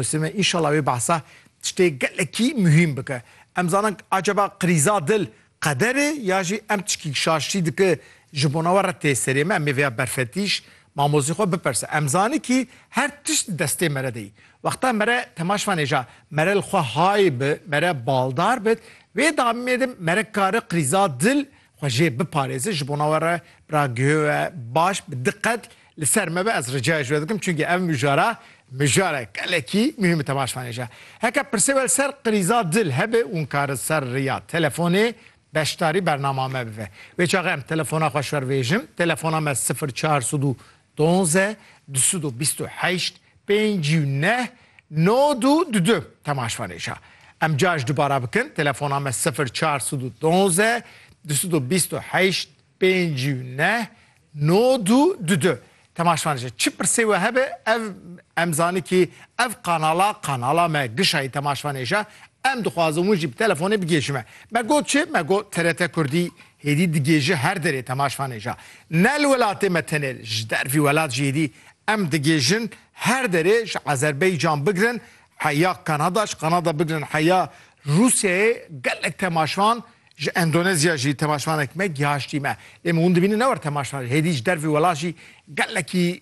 Sime înşala wê behsa tiştê gelekî muhîm bike. Em zanin acaba krîza dil qeder e ya jî em tişkî şaştî dike ji bona we re tê serê me? Em ê vêya berfetîş mamozê xwe bipersin. Em zanin kî her tişt di destê mere de yî. Wexta mere temaş vanêja mere li xwe hay bi, mere baldar bit, wê damê de mere kare krîza dil Xwe jê biparêze ji bona we re bira guhê we baş bi diqet li ser me be ez ricaya ji we dikim çunkî ev mijara mijare gelekî muhîm te baş fanêje. Heke pirsê we li ser qirîza dil hebe û nikare li ser riya telefonê beşdarî bernama me bibe. Wê çaxe em telefona xwe şervêjim, telefona me sifir çar sed û Donze, dusud u bîst u heşt, pênc û neh, nod û du du. Temaşvanêşa. Em car ji dubara bikin, telefona me sifir çar sud u donze, dusud u bîst u heşt, pênc û neh, nod û du du. Temaşvanêşa. Çi pirsê we hebe ev em zani kî ev kanala kanala me gişayî temaşvanêşa. Em dixwazin win jî bi telefonê bigihîşime. Me got çi? Me got TRT Kurdî Hêdî digê ji her derê temaşvanê ja ne li welatê me tenê ji dervî welat jî hêdî em digêjin her derê ji Azerbaycan bigirin heya Kanada ji Kanada bigirin heya Rûsyayê gelek temaşvan ji Endonezya jî temaşvanek me gihaştî me lê min hûn dibînin ne wer temaşvan hêdî ji dervî welat jî gelekî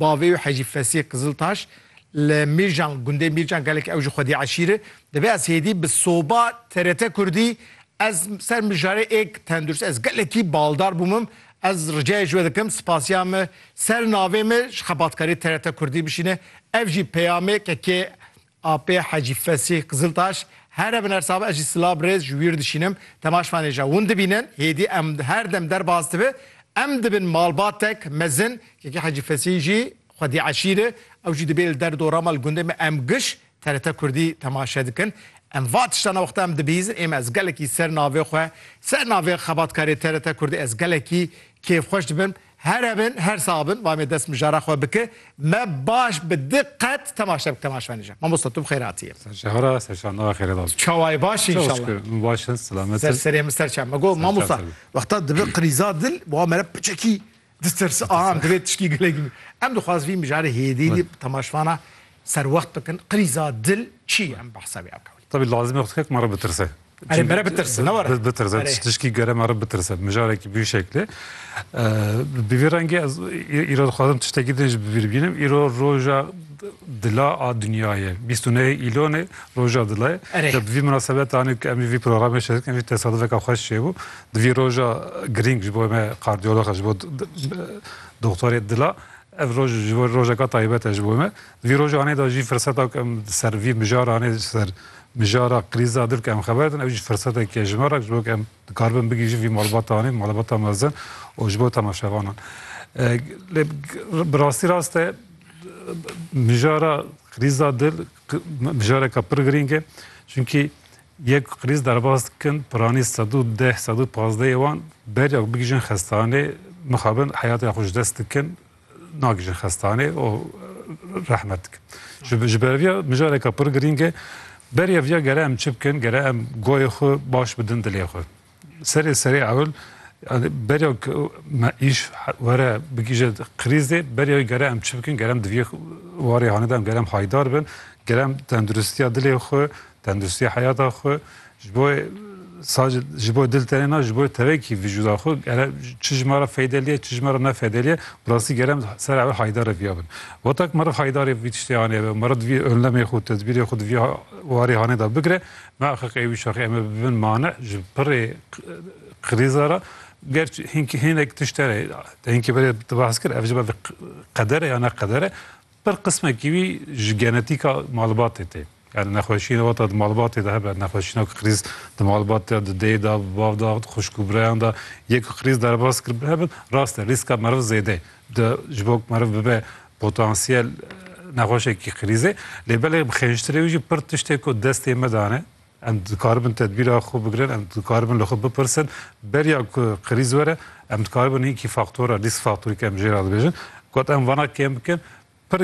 Bavê wî Hecî Fesîh Qiziltaş li Mîrcan gundê Mîrcan gelek ew ji xwedî eşîr e dibe ez hêdî bi soba TRT Kurdî ez ser mijarê êk tendurst ez gelekî baldar bûmim ez ricayê ji we dikim spasiya me ser navê me ji xebatkarê TRT Kurdî bişîne ev jî peyamê ke kê Apê Hecî Fesîh Qiziltaş, Here bi nersa be ez jî sila bi rêz ji wîr dişînim, temaşvanê ja win dibînin, hêdî em her dem derbas dibe, em dibin malbatek mezin, kekê Hecî Fesîh jî xwedî eşîr e, ew jî dibê li der dorama li gundê me em giş TRT Kurdî temaşe dikin. Em va tiştana wexta em dibihîzin ême ez gelekî ser navê xwe, ser navê xebatkarê TRT Kurdî ez gelekî kêfxweş dibim, Here bin, her sax bin, va me dest mijara xwe bike, me baş bi diqet temaşe bike temaşa nîje. Mamosta tu bi xêr hatiyê. Serşehara, serşandawa xêre das. Çawayê baş in inşallah. Şükür, min baş in, selamet in. Serê min ser çem. Me got mamosta, wexta dibe qirîza dil, wa mere piçekî ditirse, aha em divê tişkî gelek bî. Em dixwaz vî mijarê hêdî dî temaşvana serwext bikin, qirîza dil çi ye em behsa wî akewin. Tevî lazim e xwedkek me re bitirse. Erê me re bitirse ne were. Bitirse tiştişkî gere me re bitirse mijarekî bî şeklê. Bi vî rengê ez îro dixwazim tiştekî din ji bi vî bînim îro roja dila a dinyayê bîst û neyê îlonê roja dilayê bi vî minesebetanê em jî vî programê şerik em jî tesadifeka xweş çêbû di vî roja girîng ji bo me kardiyolox ji bo doktorê dila Ev roj ji bo rojeka taybet e ji bo me. Di vî rojanê de jî firseta ku em ser vî mijaranê ser mijara krîza dir ku em xeber din ew jî firsetek e ji me re ji bo ku em dikaribin bigihîjin vî malbatanê, malbata mezin û ji bo temaşevanan. Lê bi rastî rast e mijara krîza dil mijareka pir girîng e. Çimkî Yek krîz derbas dikin, piranî sed û deh, sed û pazdeh yê wan beriya ku bigihîjin xestanê, mixabin heyatiya xwe ji dest dikin, nagihîjin xestanê û rehmet dikin. Ji ji ber vê mijareke pir girîng e, beriya vê ya gere em çi bikin, gere em goyê xwe baş bidin dilê xwe. Serê serê ewil berya me îş were bigîje krîzê berya wî gere em çi bikin gerem diviyê warê hanede em gerem haydar bin gerem tenduristiya dilê xwe tenduristiya heyata xwe ji bo sadece ji bo dil tenê na ji bo tevekî vijûda xwe gere çi ji me re feydelîye çi ji me re nefeydelîye bi rastî gerem ser ewil haydar re viya bin weta ku meriv haydarê vî tiştê anêve meriv diviyê önlemê xwe tedbîrê xwe diviyê warê hanê de bigire Naxix ê wî şaxê em ê bibin mane ji pirê krîza re. Ger hinkî hinek tişt hene te hinkî berê tu behs kir ev ji ber qeder e ya ne qeder e pir qismekî wî ji genetîka malbatê tê. Yani nexweşîna wata di malbatê de hebe nexweşîna ku krîz di malbatê de di dê de di bav de di xwişk û birayan de yê ku krîz derbas kiribin hebin rast e rîska meriv zêde ye. Di ji bo ku meriv bibe Potansiyel nexweşekî krîz e. Lê belê bi xênjtirê wî jî pir tiştê ku destê me dane. Em dikaribin tedbîra xwe bigirin, em dikaribin li xwe bipirsin. Beriya ku krîz were, em dikaribin hinkî faktora, rîsk faktorî ke em jê re dibêjin, got em vana kêm bikin.